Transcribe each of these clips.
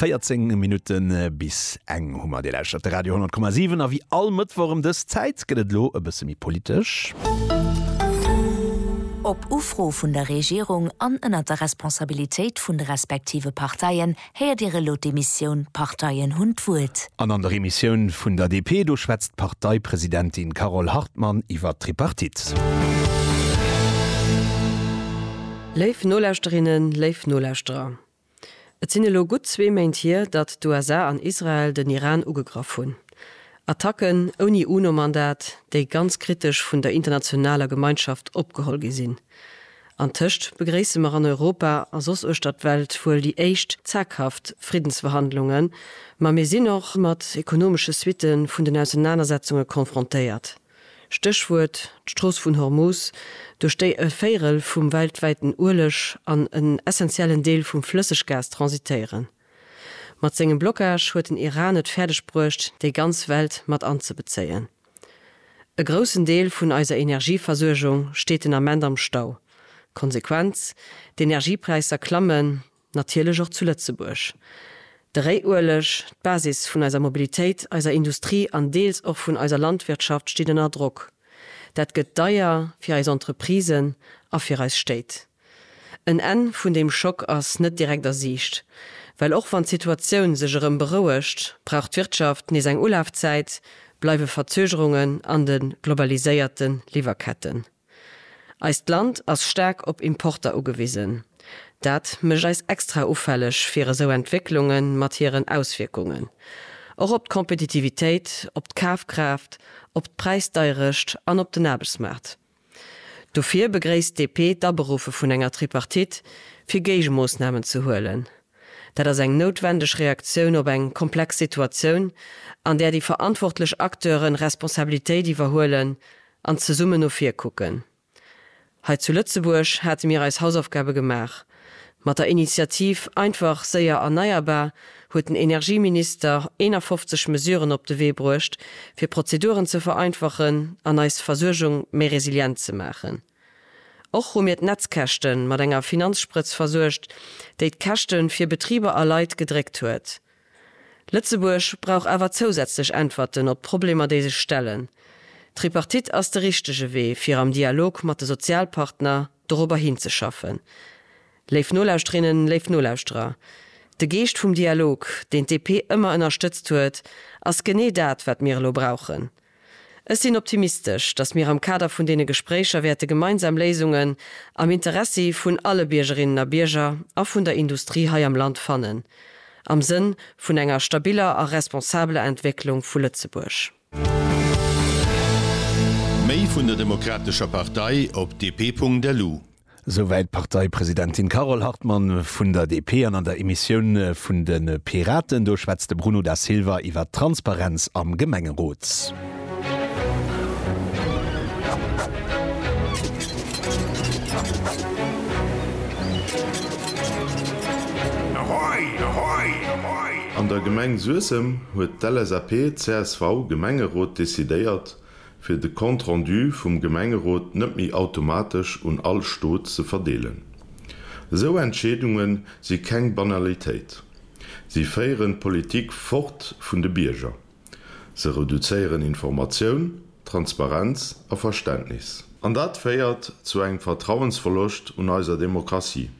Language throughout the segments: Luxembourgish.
14 Minutten bis eng hu mer. Dir lauschtert de Radio 10,7 a wéi all Mëttwoch ëm dës Zäit gëtt et elo e bësse méi politesch. Op Ufro vun der Regierung an ënnert der Responsabilitéit vun de respektive Parteien héiert Dir elo d'Emissioun D'Parteien hunn d'Wuert. An an der Emissioun vun der DP, do schwätzt d'Parteipresidentin Carole Hartmann iwwer d'Tripartite. Léif Nolauschterinnen, léif Nolauschterer, Et sinn elo gutt zwee Méint hier, datt d'USA an Israel den Iran ugegraff hunn. Attacken ouni UNO-Mandat, déi ganz kritesch vun der internationaler Gemeinschaft opgeholl gi sinn. Antëscht begréisse mer an Europa a soss uechter d'Welt wuel déi éischt zaghaft Friddensverhandlungen, ma mir sinn och mat ekonomesche Suitte vun den Ausenanersetzunge confrontéiert. Stéchwuert, d'Strooss vun Hormus, duerch déi e Véirel vum weltwäiten Ueleg an en essentiellen Deel vum Flësseggas transitéieren. Mat sengem Blockage huet den Iran et fäerdeg bruecht, déi ganz Welt mat anzebezéien. E groussen Deel vun eiser Energieversuergung steet den Ament am Stau. Konsequenz, D'Energiepräisser klammen, Natierlech och zu Lëtzebuerg. De Réiueleg, d'Basis vun eiser Mobilitéit, eiser Industrie an deels och vun eiser Landwirtschaft steet ënner Drock. Dat gëtt deier fir eis Entreprisen a fir eis Stéit. En Enn vun deem Schock ass net direkt a Siicht, well och wann d'Situatioun sech erëm berouegt, brauch d'Wirtschaft nees eng Ulafzäit, bleiwe Verzögerungen an de globaliséierte Liwwerketten. Eist Land ass staark op Importer ugewisen. Dat mécht eis extra ufälleg fir esou Entwécklunge mat hiren Auswierkungen och op d'Kompetitivitéit, op d'Kafkraaft, op d'Präisdeierecht an op den Aarbechtsmaart. Dofir begréisst DP d'Aberufe vun enger Tripartite fir Géigemoossnamen ze huelen. Dat ass eng noutwendeg Reaktioun op eng komplex Situatioun, an där déi verantwortlech Acteure Responsabilitéit iwwerhuelen an zesummen no vir kucken. Hei zu Lëtzebuerg hate mir eis Hausaufgabe gemaach. Mat der Initiativ Einfach, séier, erneierbar huet den Energieminister 51 Mesuren op de Wee bruecht, fir Prozeduren ze vereinfachen an eis Versuergung méi resilient ze maachen. Och hu mir d'Netzkäschte mat enger Finanzsprëtz versuergt, déi d'Käschte fir Betriber a Leit gedréckt huet. Lëtzebuerg brauch awer zousätzlech Äntwerten op d'Problemer déi sech stellen. D'Tripartite ass de richtege Wee fir am Dialog mat de Sozialpartner dorobber hinzeschaffen. Léif Nolauschterinnen, léif Nolauschterer, de Geescht vum Dialog, deen d'DP ëmmer ënnerstëtzt huet, ass genee dat wat mir elo brauchen. Ech sinn optimistesch, dass mir am Kader vun deene Gespréicher wäerte gemeinsam Léisungen am Interessi vun alle Biergerinnen a Bierger a vun der Industrie hei am Land fannen, am Sënn vun enger stabiler a responsabeler Entwécklung vu Lëtzebuerg. Méi vun der Demokratescher Partei op dp.lu Souwäit d'Parteipresidentin Carole Hartmann vun der DP. An an der Emissioun vun de Piraten, do schwätzt de Bruno Da Silva iwwer d'Transparenz am Gemengerot. An der Gemeng Suessem huet d'LSAP-CSV-Gemengerot decidéiert, fir de Compte rendu vum Gemengerot net méi automatesch un all Stot ze verdeelen. Esou Entscheedunge si keng Banalitéit. Si féieren d'Politik fort vun de Bierger. Se reduzéieren Informatioun, Transparenz a Verständnis. An dat féiert zu engem Vertrauensverloscht un eiser Demokratie.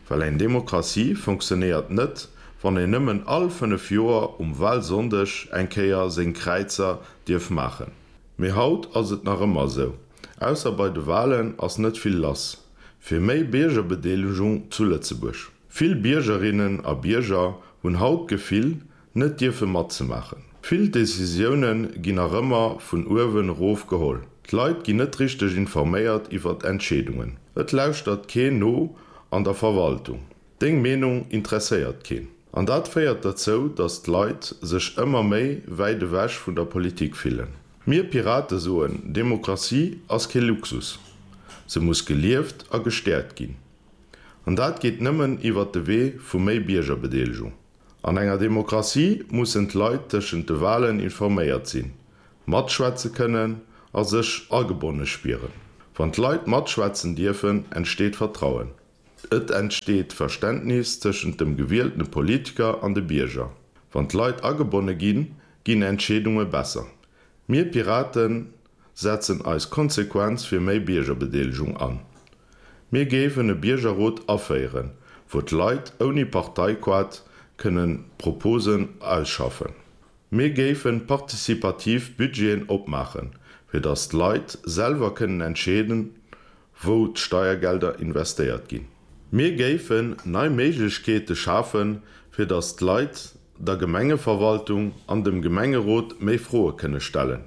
Well eng Demokratie funktionéiert net, wann een nëmmen all 5 Joer um Wahlsonndeg eng Kéier seng Kräizer dierf maachen. Mee haut ass et nach ëmmer esou, ausser bei de Wahlen ass net vill lass fir méi Biergerbedeelegung zu Lëtzebuerg. Vill Biergerinnen a Bierger hunn haut d'Gefill, net dierfe matzemaachen. Vill Decisioune ginn nach ëmmer vun uewen erof geholl. D'Leit ginn net richteg informéiert iwwer Entscheedungen. Et lauschtert keen no an der Verwaltung. Deng Meenung interesséiert keen. An dat féiert derzou, datt d'Leit sech ëmmer méi wäit ewech vun der Politik fillen. Mir Pirate soen, Demokratie ass kee Luxus. Se muss gelieft a gestäerkt ginn. An dat geet nëmmen iwwer de Wee vu méi Biergerbedeelegung. An enger Demokratie mussen d'Leit tëschent de Walen informéiert sinn, matschwätze kënnen a sech agebonne spieren. Wann d'Leit matschwätzen dierfen, entsteet Vertrauen. Et entsteet Verständnis tëschent dem gewieltene Politiker an de Bierger. Wann d'Leit agebonne ginn, ginn Entscheedunge besser. Mir Piraten setzen eis konsequenz fir méi Biergerbedeelegung an. Mir géifen e Biergerrot aféieren, wou d'Leit ouni Parteiquart kënnen Proposen ausschaffen. Mir géife participativ Budgeten opmaachen, fir datt d'Leit selwer kënnen entscheeden, wou d'Steiergelder investéiert ginn. Mir géifen nei Méiglechkeete schafen, fir datt d'Leit der Gemengeverwaltung an dem Gemengerot méi Froe kënne stellen.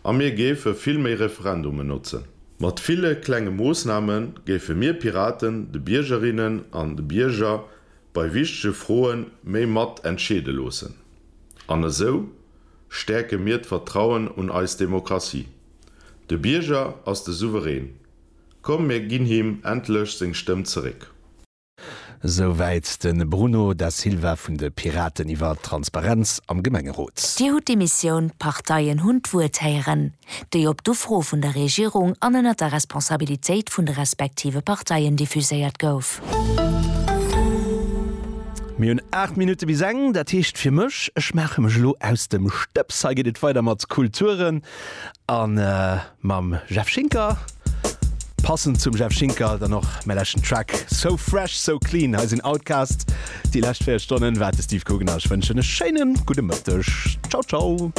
A mir géife vill méi Referendumen notzen. Mat ville klenge Moossname géife mir Piraten de Biergerinnen an de Bierger bei wichtege Froe méi mat entscheede loossen. An esou stäerke mir d'Vertrauen un eis Demokratie. De Bierger ass de Souverän. Komm mir ginn him endlech seng Stëmm zeréck. Esou wäit de Bruno Da Silva vun de Piraten iwwer d'Transparenz am Gemengerot. Dir hutt d'Emissioun D'Parteien hunn d'Wuert héieren, déi op d'Ufro vun der Regierung an ënnert der Responsabilitéit vun de respektive Parteien diffuséiert gouf. Mir hunn 8 Minutte bis eng, dat heescht fir mech, ech maache mech elo aus dem Stëbs. Hei geet et weider mat Kulturen. an mam Jeff Schinker passend zum Jeff Schinker dann och mé lächen Track so fresh so clean hei sinn Outcast déi lächt 4 Stonnen wat de Steve Coogan ass. Ech wënschen e schéinen gudde Mëtteg. Ciao ciao.